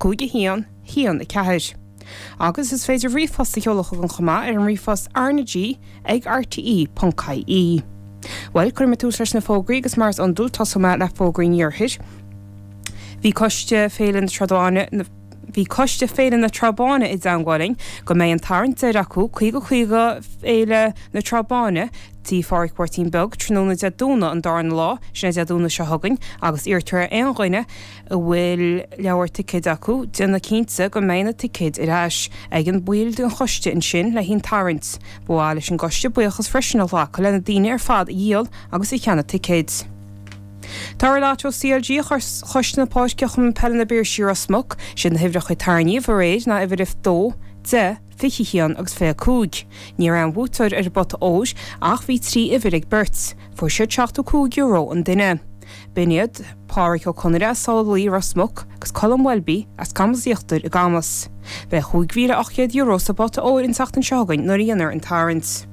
5 1 1 4 Agus is féidir ríomhphost a sheoladh chugam chomh maith ar an ríomhphost rnag ag rte ponc ie Bhuel, cuirfidh mé tús leis na fógraí agus mar is iondúil tosóidh mé le fógraí an iarthair. Bhí coiste Féile bhí coiste Féile na Trá Báine i dteangmháil linn go mbeidh an tarraingt deiridh acu, caoga caoga Féile na Trá Báine, Tí Phádraic Mháirtín Beag, tráthnóna Dé Domhnaigh an darna lá, sin é Dé Domhnaigh seo chugainn, agus iarrtar ar aon dhuine, a bhfuil leabhar ticéid acu, déanamh cinnte go mbeidh na ticéid ar ais ag an mball den choiste ansin le haghaidh an tarraingt. Ba mhaith leis an gcoiste buíochas freisin a ghlacadh lena daoine ar fad a dhíol agus a cheannaigh ticéid. Toradh lotto CLG Choiste na Páirce Chumann Peile na bPiarsaigh Ros Muc siad na huimhreacha a tarraingíodh aréir ná uimhir a dó, deich, fiche a haon agus fiche a cúig. Ní raibh aon bhuaiteoir ar an bpota óir ach bhí trí uimhir ag beirt. Fuair siad seachtó a cúig euro an duine. B'in iad, Pádraic Ó Conaire as Salalaoi, Ros Muc, agus Colm Welby as Camas Íochtair i gCamas. Beidh €5,800 sa bpota óir an tseachtain seo chugainn nuair a dhéanfar an tarraingt.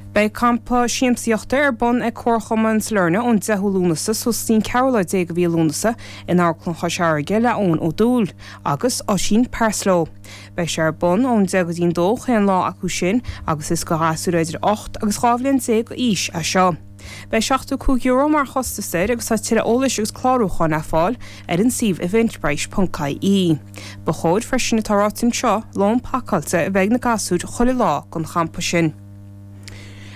Beidh campa siamsaíochta ar bun ag Comharchumann Sailearna ón 10ú Lúnasa suas go dtí an 14 lá de mhí Lúnasa in Amharclann Chois Fharraige le Eoin Ó Dubhghaill agus Oisín Parslow. Beidh sé ar bun ón 10 go dtí an 2 chaon lá acu sin agus is do ghasúir idir 8 agus 12 bhliain d'aois é seo. Beidh €75 mar chostas air agus tá tuilleadh eolais agus clárúcháin le fáil ar an suíomh eventbrite.ie. Ba chóir freisin, atá ráite anseo, lón pacáilte a bheith ag na gasúir chuile lá don champa sin.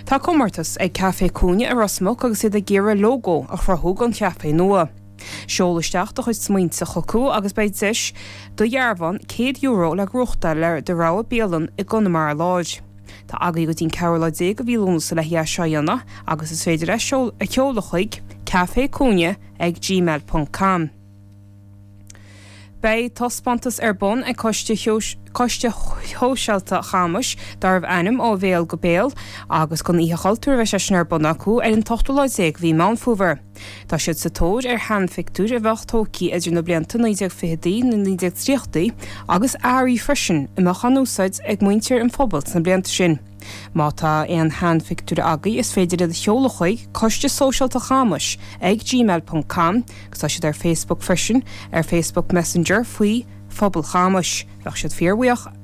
Tá comórtas ag Café Cúinne i Ros Muc agus iad ag iarraidh lógó a chruthú don chaifé nua. Seol isteach do chuid smaointe chucu agus beidh duais de dhearbhán €100 le gnóthachtáil ar do rogha bialann i gConamara Láir. Tá agat go dtí an 14 lá de mhí Lúnasa le haghaidh é seo a dhéanamh agus is féidir é a sheoladh chuig café cúinne ag gmail ponc com. Beidh taispeántas ar bun ag Coiste Shóisialta Chamuis darbh ainm Ó Bhéal go Béal agus don Oíche Chultúir a bheidh sé sin ar bun acu ar an t-ochtú lá déag de mhí Meán Fómhair. Tá siad sa tóir ar sheanphictiúir a bheadh tógtha idir na blianta 1920idí, na 1930idí agus earraí freisin a mbeadh á n-úsáid ag muintir an phobail sna blianta sin. Má tá aon sheanphictiúir agaibh is féidir iad a sheoladh chuig, Coiste Sóisialta Chamuis ag gmail ponc com, agus tá siad ar Facebook freisin, ar Facebook Messenger faoi, Phobal Chamuis. Bheadh siad fíorbhuíoch.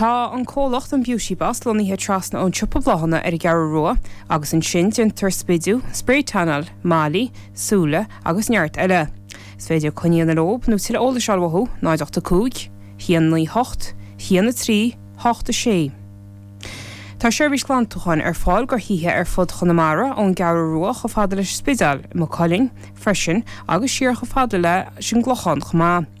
Tá an comhlacht An Beauty Boss lonnaithe trasna ón siopa bláthanna ar an gCeathrú Rua agus ansin déantar smidiú, sprae tannáil, mailí, súile agus neart eile. Is féidir coinne a dhéanamh leob nó tuilleadh eolais a fháil uathu, 085 198 138 6. Tá seirbhís glantúcháin ar fáil do thithe ar fud Chonamara, ón gCeathrú Rua chomh fada leis an Spidéal, i Maigh Cuilinn freisin agus siar chomh fada leis an gClochán chomh maith.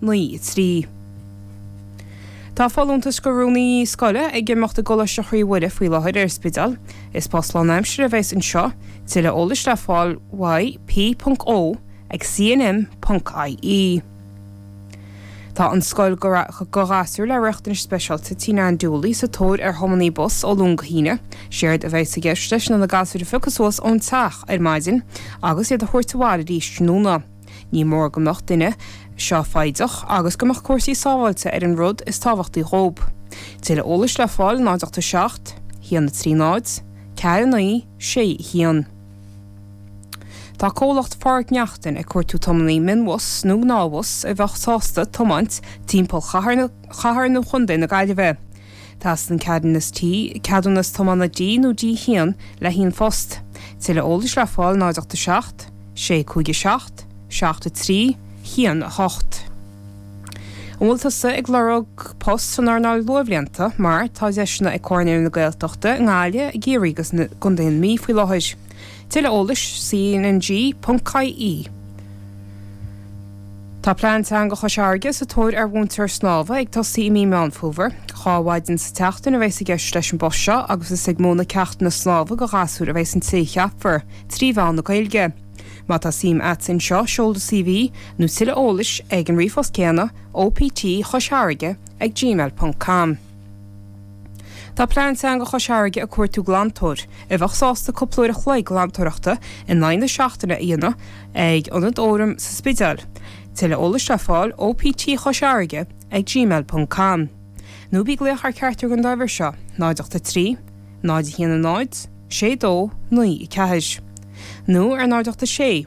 9. 3. Tá folúntas do Rúnaí Scoile ag imeacht i gColáiste Chroí Mhuire faoi láthair ar an Spidéal. Is post lánaimseartha a bheas anseo. Tuilleadh eolais le fáil y p.o ag cnm ponc ie. Tá an scoil do ghasúir le riachtanais speisialta Tí Nan Dooley sa tóir ar thiománaí bus ó Luan go hAoine. Séard a bheas i gceist leis ná na gasúir a phiocadh suas ón teach ar maidin agus iad a thabhairt abhaile arís tráthnóna. Ní mór go mbeadh an duine seo foighdeach agus go mbeadh cúrsaí sábháilte ar an rud is tábhachtaí dhób. Tuilleadh eolais le fáil 087 130 49 61. Tá comhlacht Phádraic Neachtain ag cuartú tiománaí mionbhus nó gnáthbhus a bheadh sásta tiomáint timpeall ar chathair nó chontae na Gaillimhe. Teastaíonn ceadúnas ti, ceadúnas tiomána D nó D1 le haghaidh an phost. Tuilleadh eolais le fáil 087 657 7318. An bhfuil tusa ag lorg post san earnáil luathbhlianta mar tá deiseanna ag Comhar Naíonraí na Gaeltachta i nGaillimh, i gCiarraí agus i gContae na Mí faoi láthair. Tuilleadh eolais, cnng.ie Tá Plean Teanga Chois Fharraige sa tóir ar mhúinteoir snámha ag tosaí i mí Meán Fómhair. Dhá mhaidin sa tseachtain a bheas i gceist leis an bpost seo agus is ag múineadh ceachtanna snámha do ghasúir a bheas an té a cheapfar, trí mheán na Gaeilge. Má tá suim a't in seo, seol do CV, nó tuilleadh eolais, ag an ríomhphost céanna, optchoisfharraige ag gmail ponc com. Tá Plean Teanga Chois Fharraige ag cuartú glantóir a bheadh sásta cúpla uair a chloig glantóireachta in aghaidh na seachtaine a dhéanamh ag Ionad an Fhóraim sa Spidéal. Tuilleadh eolais le fáil optchoisfharraige ag gmail ponc com nó bí ag glaoch ar cheachtar den dá uimhir seo, 083 010 6294 nó ar an 086.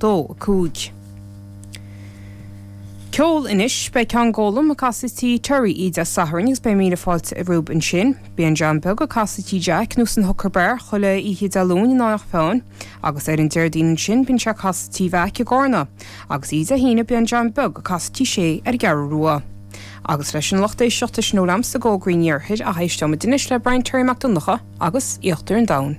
2, 5. Ceol Anois beidh Ceann Gólaim ag casadh Tí Terry oíche Dé Sathairn agus beidh míle fáilte romhaibh ansin. Bíonn John Beag ag casadh Tí Jack nó san Hooker Bar chuile oíche Dé Luain in Eanach Mheáin agus ar an Déardaoin ansin bíonn sé ag casadh Tí Mheaic i gCárna agus oíche Dé hAoine bíonn John Beag ag casadh Tí Shé ar an gCeathrú Rua. Agus leis sin a lucht éisteachta sin a bhfuil a'msa d'fhógraí an iarthair ach éisteoidh muid anois le Brian Terry Mac Donnacha agus Íochtar an Domhain.